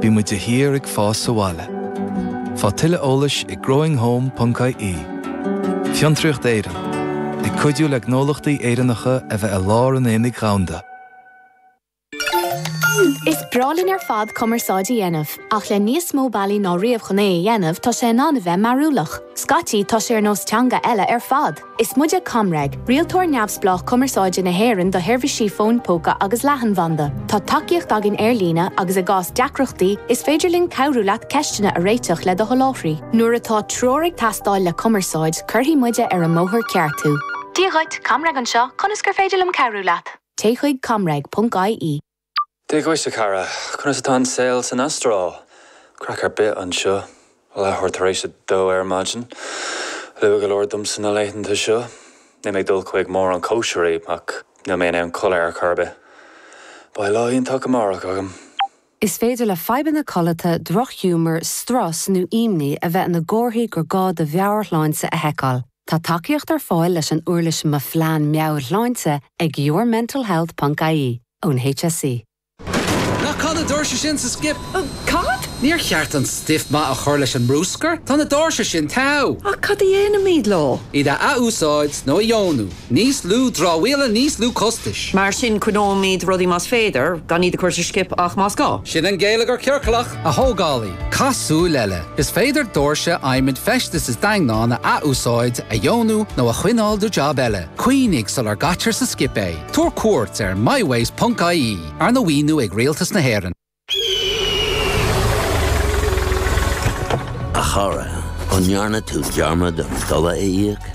Bímid de shíor ag fás sa bhaile. Faigh tuilleadh eolais ag growinghome.ie Fiontraíocht Éireann, ag cuidiú le gnólachtaí Éireannacha a bheith i lár an aonaigh dhomhanda. Is breá linn ar fad cumarsáid a dhéanamh, ach le níos mó bealaí ná riamh chun é a dhéanamh, tá sé in ann a bheith mearúlach. Scaití, tá sé ar nós teanga eile ar fad. Is muide ComReg, rialtóir neamhspleách cumarsáide na hÉireann do sheirbhísí fóin póca agus leathanbhanda. Tá tacaíocht againn ar líne agus i gcás deacrachtaí, is féidir linn cabhrú leat ceisteanna a réiteach le do sholáthraí. Nuair atá treoir ag teastáil le cumarsáid, cuirfidh muide ar an mbóthar ceart thú. Dia dhuit, ComReg anseo, conas gur féidir linn cabhrú leat? Téigh chuig comreg.ie. Dia dhuit, a chara. Conas atá an saol san Astráil? Craic ar bith anseo. Leathuair tar éis a dó ar maidin. Luath go leor domsa na laethanta seo. Níl mé ag dul chuig mórán cóisirí, ach níl mé in ann codladh ar chor ar bith. Beidh lá iontach amárach agam. Is féidir le fadhbanna codlata, drochghiúmar, strus nó imní a bheith ina gcomharthaí gur gá do mheabhairshláinte a sheiceáil. Tá tacaíocht ar fáil leis an uirlis Mo Phlean Meabhairshláinte ag yourmentalhealth.ie ón HSE. Ná caith na doirse sin sa skip? Cad? Níor cheart an stuif maith a chur leis an mbrúscar? Tá na doirse sin teo! Ach cad a dhéanfaimid leo? Iad a athúsáid nó a dheonú. Níos lú dramhaíola, níos lú costais. Mar sin coinneoimid rudaí más féidir, gan iad a chur sa skip ach más gá. Sin an geilleagar ciorclach! A thógálaí, caith súil eile! Is féidir doirse adhmaid feistis is daingneáin a athúsáid, a dheonú nó a choinneáil do jab eile. Cuimhnigh sular gcaitear sa skip é. Tabhair cuairt ar mywaste ponc ie, arna mhaoiniú ag Rialtas na hÉireann. A chara, an ndearna tú dearmad an dola a íoc?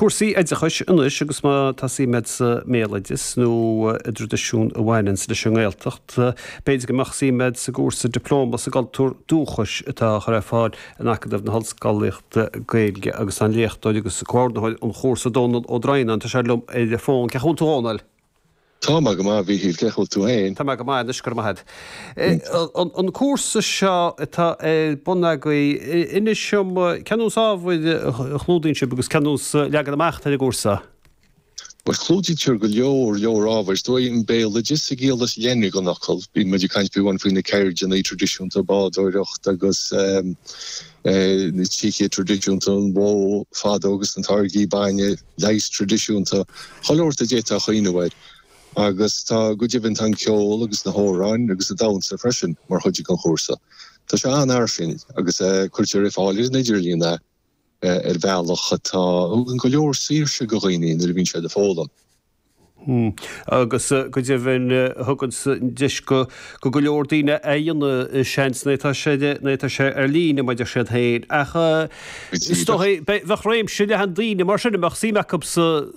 Cúrsaí oideachais anois agus má tá suim agat sa mbéaloideas nó i dtraidisiúin a bhaineanns leis an nGaeltacht, b'fhéidir go mbeadh suim agat sa gcúrsa Dioplóma sa gCultúr Dúchais atá á chur ar fáil in Acadamh na hOllscolaíochta Gaeilge agus tá an léachtóir agus comhordaitheoir an chúrsa, Dónall Ó Droighneáin, tá sé liom ar an bhfón. Cén chaoi a bhfuil tú, Dhónaill? Tá mé go maith, Mhíchíl, cén chaoi a bhfuil tú féin? Tá mé go maith anois, go raibh maith a'd. An cúrsa seo atá ar bun agaibh, inis dom, cén nós ábhair a chlúdaíonn sibh agus cén nós leagan amach atá ar an gcúrsa? Bhuel, clúdaítear go leor, leor ábhar. Is dóigh, an béaloideas sa gciall is leithne den fhocal. Bíonn muid ag caint fiú amháin faoi na ceirdeanna traidisiúnta, bádóireacht agus na tincéid traidisiúnta, an bhó bhainne agus na táirgí bainne, leigheas traidisiúnta, chuile shórt a d'fhéadfá a smaoineamh air. Agus tá, go deimhin, tá an ceol agus na hamhráin agus an damhsa freisin mar chuid den chúrsa. Tá sé an-fhairsing agus cuirtear ar fáil ar an idirlíon é ar bhealach atá, a thugann go leor saoirse do dhaoine nuair a bhíonn siad ag foghlaim. Agus go deimhin, thugann sé deis go go leor daoine a fhaigheann seans nuair atá sé nuair atá sé ar líne mar a deir siad féin. Ach, is dóigh, bheadh réimse leathan daoine mar sin a mbeadh suim acu sa.